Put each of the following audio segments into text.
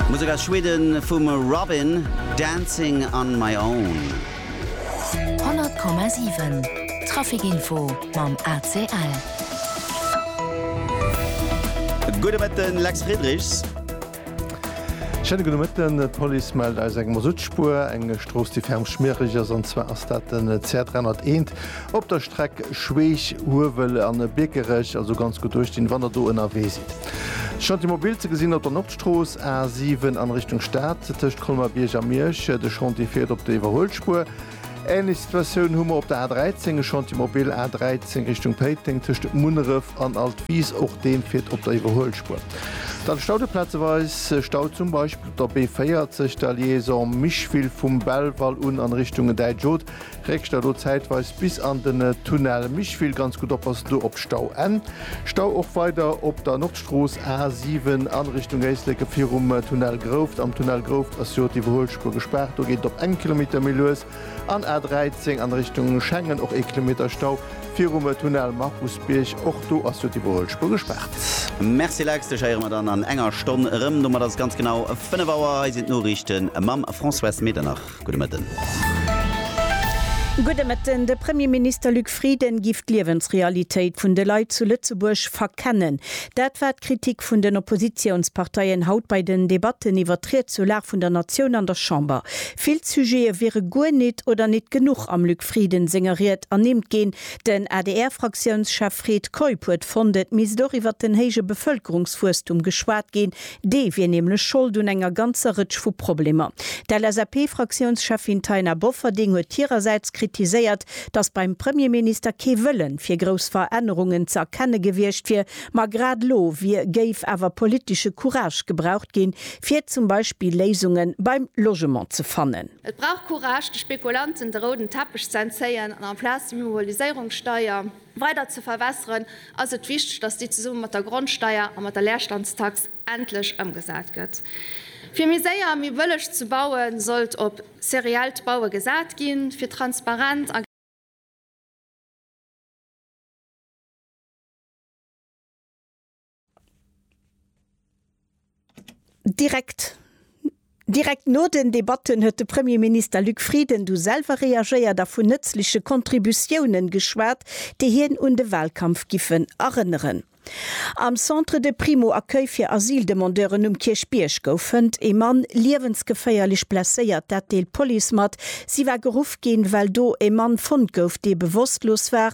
Musek aus Schweden vum Robyn, Dancing on my own. 100,7 Trafikinfo mam ACL. Gudde Mëtten, Lex Friedrichs. Schéine gudde Mëtten. D'Police mellt eis eng Masuttspur, eng Strooss déi ferm schmiereg ass, an zwar ass dat den CR 301 Op der Streck Schweech, Huewel an Biekerech also ganz gutt duerchstinn, wann der do ënnerwee sidd. Chantier mobil ze gesinn op der Nordstrooss, A7 an Richtung Stad, tëscht Colmer-Bierg a Miersch. De Chantier fiert op der Iwwerhuelspuer. Ähnlech Situatioun hu mer op der A13, e Chantier mobil A13 Richtung Péiteng, tëscht Munneref an Altwis. Och deen fiert op der Iwwerhuelspuer. Dann Stau de plazeweis Stau zum Beispill op der B40, der Liaison Micheville vum Belval un an Richtung Däitsch Haut. Réckcht der do zäitweis bis an den Tunnel Micheville ganz gutt op, ass do op Stau N. Stau och weider op der Nordstrooss A 7 a Richtung Éisleke virum Tunnel Grouft. Am Tunnel Grouft ass jo d'Iwwerhuelspuer gespaart, do geet et op engem Kilometer méi lues. An A 13 an Richtung Schengen och ee Kilometer Stau virum Tunnel Markusbierg, och do ass jo d'Iwwerhuelspuer gespaart. Merci Lex, dech héiere mer dann an enger Stonn erëm. Domat ass et ganz genau 5 Auer. Hei sinn d'Noriichte mam François Medernach. Gudde Mëtten. Gudde Mëtten. De Premierminister Luc Frieden giff d'Liewensrealitéit vun de Leit zu Lëtzebuerg verkennen. Dat war d'Kritik vun den Oppositiounsparteien haut bei den Debatten iwwer d'Ried zur Lag vun der Natioun an der Chamber. Vill Sujete wiere guer nit oder nit genuch am Luc Frieden senger Ried ernimmt ginn. Den ADR-Fraktiounschef Fred Keup huet fonnt, et misst och iwwer den héije Bevëlkerungswuesstum geschwat ginn, Dee wier nämlech Schold un enger ganzer Rëtsch vu Problemer. D'LSAP-Fraktiounscheffin Taina Bofferding huet hirersäits kritiséiert, datt beim Premierminister kee Wëllen fir grouss Verännerungen ze erkenne gewiescht wier, ma grad elo wier géif awer politesche Courage gebraucht ginn, fir zum Beispill Léisunge beim Logement ze fannen. Et brauch Courage, de Spekulanten de rouden Teppech ze entzéien an amplaz d'Immobiliséierungssteier, Weider ze verwässeren, ass et wichteg, dass déi zesumme mat der Grondsteier a mat der Leerstandstax endlech ëmgesat gëtt. Fir méi séier a méi bëlleg ze baue sollt op seriellt Baue gesat ginn, fir transparent a. Direkt Direkt no den Debatten huet de Premierminister Luc Frieden du selwer reagéiert a vun nëtzleche Contributiounen geschwat, déi hien un de Wahlkampf giffen erënneren. Am Centre de Primo-Accueil fir Asyldemandeuren um Kierchbierg goufen e Mann liewensgeféierlech blesséiert, dat deelt d'Police mat. Si war geruff ginn, well do e Mann fonnt gouf, dee bewosstlos war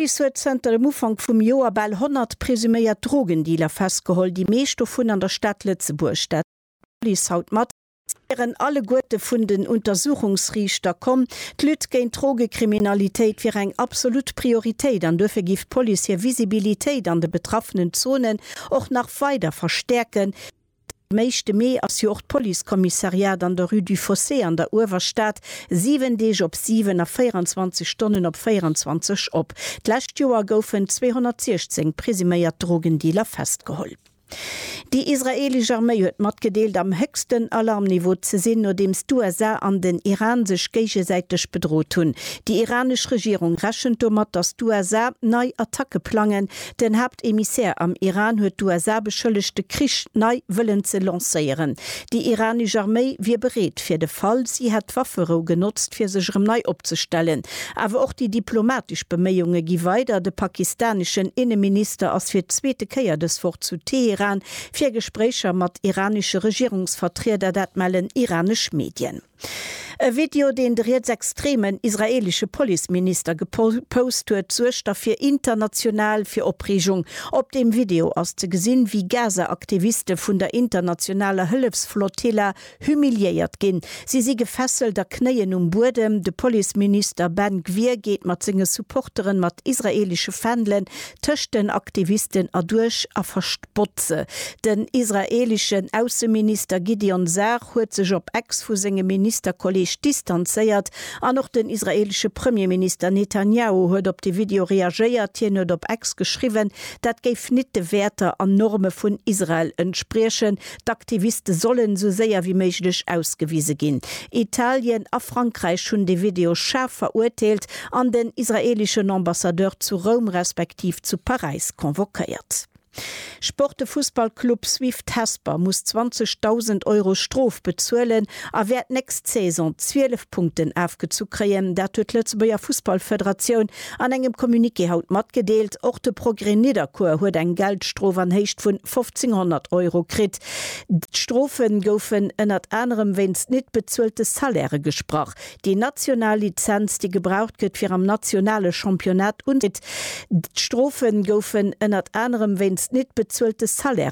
D'Police huet zënter dem Ufank vum Joer bal 100 presuméiert Drogendealer festgeholl, déi meescht dovun an der Stad Lëtzebuerg. Dat deelt d'Police haut mat. Si wieren alleguerte vun den Untersuchungsriichter komm. D'Lutte géint d'Drogekriminalitéit wier eng absolut Prioritéit an duerfir géif d'Police hir Visibilitéit an de betraffenen Zonen och nach weider verstäerken, Den éischte Mee ass jo och d'Policekommissariat an der Rue du Fossé an der Uewerstad 7 Deeg op 7 a 24 Stonnen op 24 op. D'lescht Joer goufen 216 presuméiert Drogendealer festgeholl. Déi israeelesch Arméi huet matgedeelt, am héchsten Alarmniveau ze sinn, nodeems d'USA an den Iran sech géigesäiteg bedrot hunn. Déi iranesch Regierung rechent domat, datt d'USA nei Attacke plangen, Den Haaptemissaire am Iran huet d'USA beschëllegt de Krich nei wëllen ze lancéieren. Déi iranesch Arméi wier bereet fir de Fall. Si hätt d'Wafferou genotzt fir sech erëm nei opzestellen. Awer och déi diplomatesch Beméiunge gi weider. De pakistaneschen Inneminister ass fir d'zweete Kéier dës Woch zu Teheran fir Gespréicher mat iranesche Regierungsvertrieder, dat mellen iranesch Medien. E Video, deen de rietsextremen israeelesche Policeminister gepost huet, suergt da fir international fir Opreegung. Op deem Video ass ze gesinn, wéi Gaza-Aktiviste vun der internationaler Hëllefsflotilla humiliéiert ginn. Si si gefesselt a knéien um Buedem. De Policeminister Ben Gvir geet mat senge Supporteren mat israeelesche Fändelen tëscht den Aktivisten erduerch a Botze. Den israeeleschen Ausseminister Gideon Sar huet sech op Ex vu sengem Ministerkolleeg distanzéiert an och den israeelesche Premierminister Netanjahu huet op de Video reagéiert. Hien huet op Ex geschriwwen, dat géif nit de Wäerter an Norme vun Israel entspriechen. D'Aktiviste sollen esou séier wéi méiglech ausgewise ginn. Italien a Frankräich hunn de Video schaarf verurteelt an den israeeleschen Ambassadeur zu Roum respektiv zu Paräis convoquéiert. Sport De Fussballclub Swift Hesper muss 20.000 Euro Strof bezuelen a wäert nächst Saison 12 Punkten afgezu kréien. Dat huet d'Lëtzebuerger Fussballfederatioun an engem Communiqué haut matgedeelt. Och de Progrès Nidderkuer huet eng Geldstrof an Héicht vun 1.500 Euro kritt. D'Strofe goufen ënnert anerem wéinst nit bezuelte Salairë gesprach. Déi national Lizenz, déi gebraucht gëtt, fir am nationale Championnat unzet. D'Strofe goufen ënnert anerem wéinst net bezuelte Salaire.